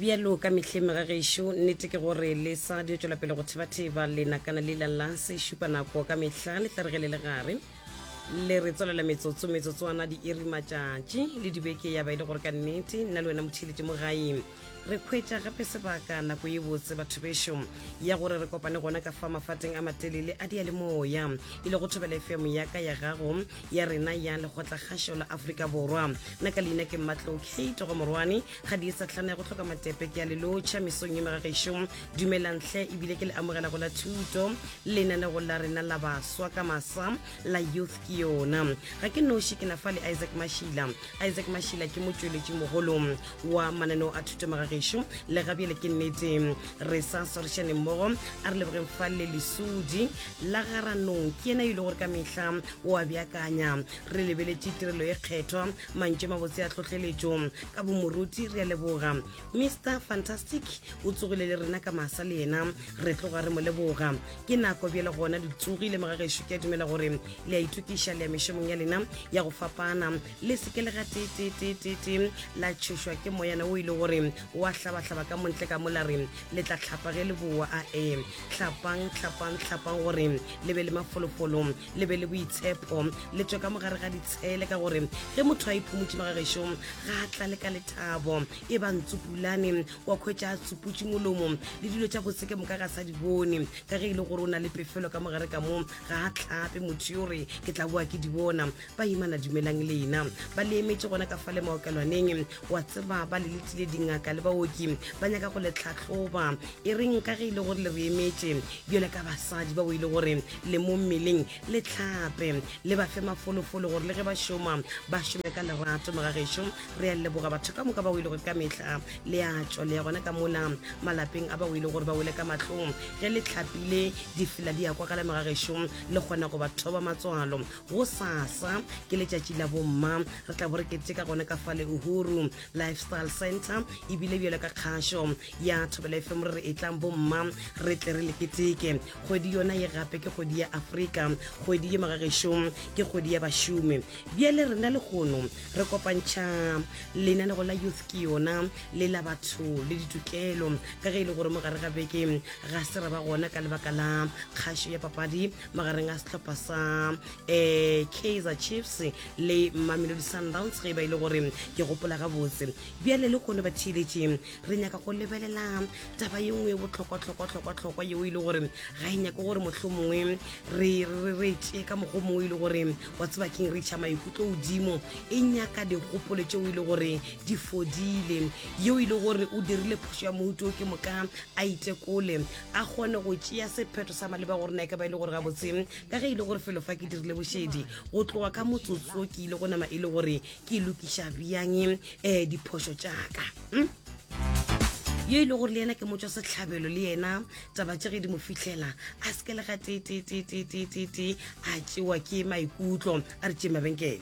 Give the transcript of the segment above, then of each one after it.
bjalo ka mehleng mega gešo nnete ke gore le sa di tswela pele go thebatheba lenakana le lala se šupa nako ka mehla le tla re ge le le gare le re tswelela metsotso metsotswana diiri matšatši le dibeke ya ba e le gore ka nnete nna le wena motheletše mo gaeng re kgwetša gape sebaka nako ye botse batho bešo ya gore re kopane gona ka fa mafateng a matelele a diyalemoya e le go thobela efemo ya ka ya gago ya rena ya lekgotlakgašo la aforika borwa nna ka leina ke mmatlo kate go morwane ga di e sa tlhana ya go tlhoka matepe ke ya lelotšha mesong ye megagešo dumelantle ebile ke le amogela go la thuto lenanego la rena la baswa ka masa la youth ke yona ga ke noši ke na fa le isaac mashila isaac mashila ke motšweletši mogolo wa mananeo a thuto magagešo le gabjele ke nnete re sa swarišaneng mmogo a re lebogeng fa le lesudi la garanong ke yena e le gore ka mehla o a beakanya re lebeletše tirelo e kgethwa mantše mabotse a tlhohleletšo ka bomoruti re a leboga mr fantastic o tsogile le rena ka masa le yena re tloga re mo leboga ke nako bjele gona le tsogile mogagešo ke a dumela gore le a ithokiša le ya mešomong ya lena ya go fapana le seke le ga tetetetete la tšhošwa ke moyana o ile e gore wa hlabahlaba ka montle ka mola re le tla tlhapa ge le boa a e tlhapang tlhapang tlhapang gore le be le mafolofolo le be le boitshepo le tswe ka mogare ga ditshele ka gore ge motho a iphomotse magagešo ga a tlale ka lethabo e ba ntsupulane wa kgwetša a tsuputše molomo le dilo tša botse ke moka ga sa di bone ka ge e le gore o na le pefelo ka mogare ka moo ga a tlhape motho yo re ke tla boa ke di bona baimana dumelang lena ba le emetše gona ka fa le maokelwaneng wa tseba ba le letlile dingaka le baoki ba nyaka go le tlhatlhoba e reng ka ge e le gore le re emetše bjale ka basadi ba o ile gore le mo mmeleng le tlhape le ba fe mafolofolo gore le ge ba šoma ba šome ka lerato mogagešo re ya leboga batho ka moka ba o ile gore ka mehla le a tšwa le ya gona ka mola malapeng a ba o ile gore ba wele ka matlong ge le tlhapile difela di ya kwa gale mogagešo le kgona go ba thoba matswalo gosasa ke letšatši la bomma re tla bo re keteka gona ka fa leohuru lifestyle center ebile bjalo ka kgašo ya thobela efe mo re re e tlang bomma re tle re le keteke kgwedi yona ye gape ke kgwedi ya afrika kgwedi ye magagešong ke kgwedi ya bašomi bjale rena le kgono re kopantšha lenanego la youth ke yona le la batho le ditokelo ka ge e le gore mo gare ga beke ga se ra ba gona ka lebaka la kgašo ya papadi magareng a setlhopha sa um eh, kaiser chiefs le mamelodi sundowns ge e ba e le gore ke gopola gabotse bjale le kone batheeletše re nyaka go lebelela taba ye nngwe e botlhokwatlhokwatlhokwatlhokwa yeo e le gore ga e nyake gore motlho mongwe re tšee ka mokgwa mongwe e le gore wa tseba keng re tšha maikutlo godimo e nyaka dikgopolo tšeo e le gore di fodile yeo e le gore o dirile phoso ya mohuto ke moka a itekole a kgone go tšea sephetho sa maleba gore nae ka ba e le gore gabotse ka ge e le gore felo fa ke dirile bošedi go tloga ka motsotso ke ile go nama e le gore ke lokiša bjang um diphoso tšaka hmm? yo e le gore le yena ke motswa setlhabelo le yena taba tše ge di mo fitlhela a se ke le ga tetetetetetete a tsewa ke maikutlo a re tšee mabenkele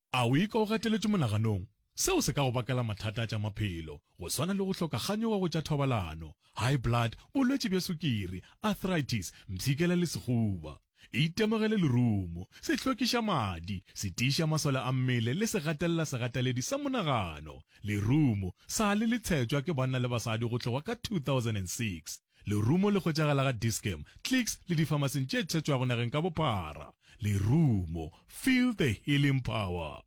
A o ikwa o gateletšwe monaganong? Seo se ka go bakela mathata a tša maphelo, go swana le go hloka kganyogo go tša thobalano, high blood, bolwetši bja sukiri, arthritis, mpshikela le sehuba. Itemogele lerumo, sehlokišamadi, setiišamasole a mmele le segatelela-segateledi sa monagano, lerumo, sa le le tshetšwa ke banna le basadi go tloga ka 2006. Lerumo le hwetšagala ga Dis-Chem, Clicks le difamaseng tše thetšwago nageng ka bophara. Lerumo, feel the healing power.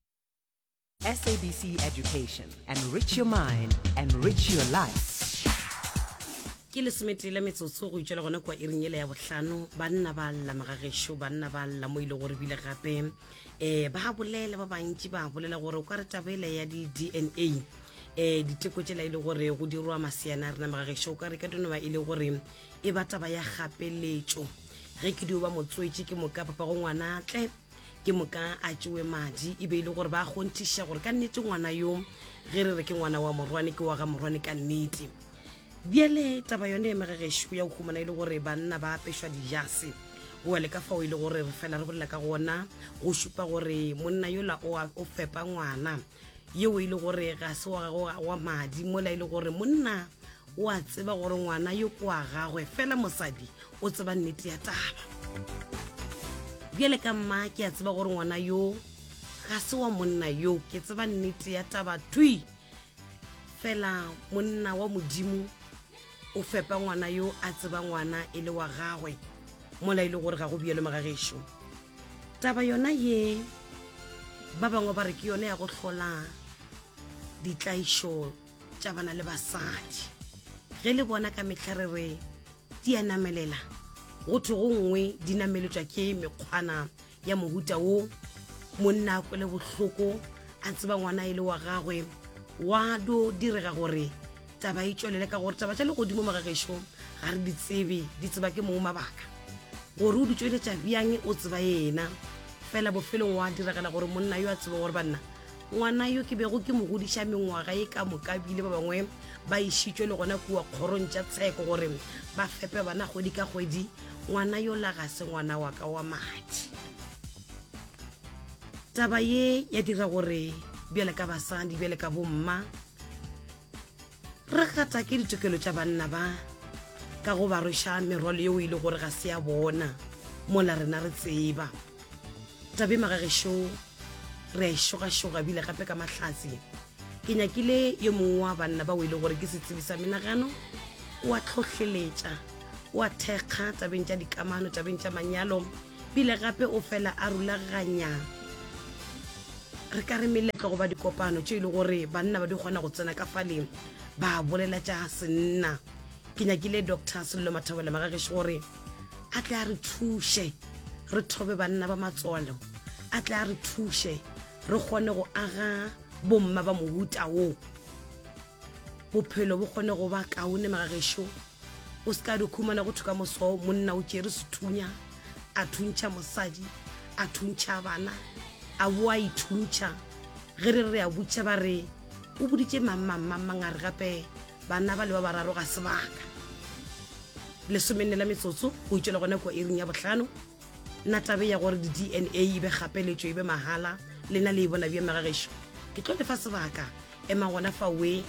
SABC Education. Enrich your mind. Enrich your life. Ke lesometee la metsotso go itšwela gona kua iring yela ya bohlano. Banna ba lla mga gešo, banna ba lla mo ile gore bile gape um ba bolela ba bantši ba bolela gore o ka re taba ela ya di-DNA um diteko tsela e le gore go dirwa maseana a rena magagešo o ka re ka dino ba e le gore e ba taba ya gapeletšo ge ke dio ba motswetše ke moka papa go ngwana tle ke moka a tšewe madi e be e le gore ba kgonthiša gore ka nnete ngwana yo ge re re ke ngwana wa morwane ke wa ga morwane ka nnete bjale taba yone magagešo ya go humana e le gore banna ba apešwa dijase oa le ka fao e le gore re fela re bolela ka gona go šupa gore monna yola o fepa ngwana yeo e le gore ga se wa gago ga wa madi mola e le gore monna o a tseba gore ngwana yo ko wa gagwe fela mosadi o tseba nnete ya taba bjale ka mma ke a tseba gore ngwana yo ga se wa monna yo ke tseba nnete ya taba twi fela monna wa modimo o fepa ngwana yo a tseba ngwana e le wa gagwe mola e le gore ga go bjelo magagešo taba yona ye ba bangwe ba re ke yone ya go hlola ditlaišo tša bana le basadi ge le bona ka mehla re re di a namelela go thwe go nngwe di nameletswa ke mekgwana ya mohuta wo monna a kwele bohloko a tseba ngwana e le wa gagwe wa do direga gore taba e tšwelele ka gore taba tša legodimo magagešong ga re di tsebe di tseba ke mong mabaka gore o di tšweletša bjang o tseba yena fela bofelong wa diragala gore monna yo a tseba gore banna ngwana yo ke bego ke mo godiša mengwaga e ka moka bile ba bangwe ba išitswe le gona kua kgorong tša tsheko gore ba fepe bana kgwedi ka kgwedi ngwana yo la ga se ngwana wa ka wa madi taba ye ya dira gore bjale ka basadi bjale ka bomma re gata ke ditokelo tša banna ba ka go ba rweša merwalo yeo e le gore ga se ya bona mola rena re tseba tabe magagešo re a išogašoga e bile gape ka mahlatsi ke nyakile yo mongwe wa banna bao e le gore ke setsebi sa menagano o a tlhohleletša o a thekga tabeng tša dikamano tabeng tša manyalo pele gape o fela a rulaganya Re ka re meletlo goba dikopano tše e le gore banna ba di kgona go tsena ka fale ba bolela tša senna. Ke nyakile Doctor Sello Mathobela Magageši gore a tle a re thuše re thobe banna ba matswalo, a tle a re thuše re kgone go aga bomma ba mohuta wo. bophelo bo kgone go ba kaone magagešo o se ka di khumana go thwe ka moso monna o tšere sethunya a thuntšha mosadi a thuntšha bana a bo a ithuntšha ge re re a butšha ba re o boditše mangmangmangmang a re gape bana ba le ba bararo ga sebaka lesomenne la metsotso go itšwela gona kua iring ya botlhano nna tabe ya gore di-dna e be gapeletšo e be mahala lena le e bona bja magagešo ke tlo lefa sebaka ema gona fa we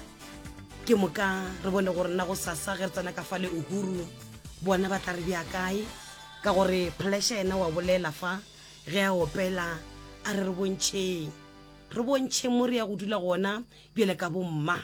ke moka re bone gore nna go sasa ge re tsena ka fa le uhuru bona ba tla re bja kae ka gore pleasure ena wa bolela fa ge a opela a re re bontšheng re bontšheng mo re ya go dula gona bjale ka bomma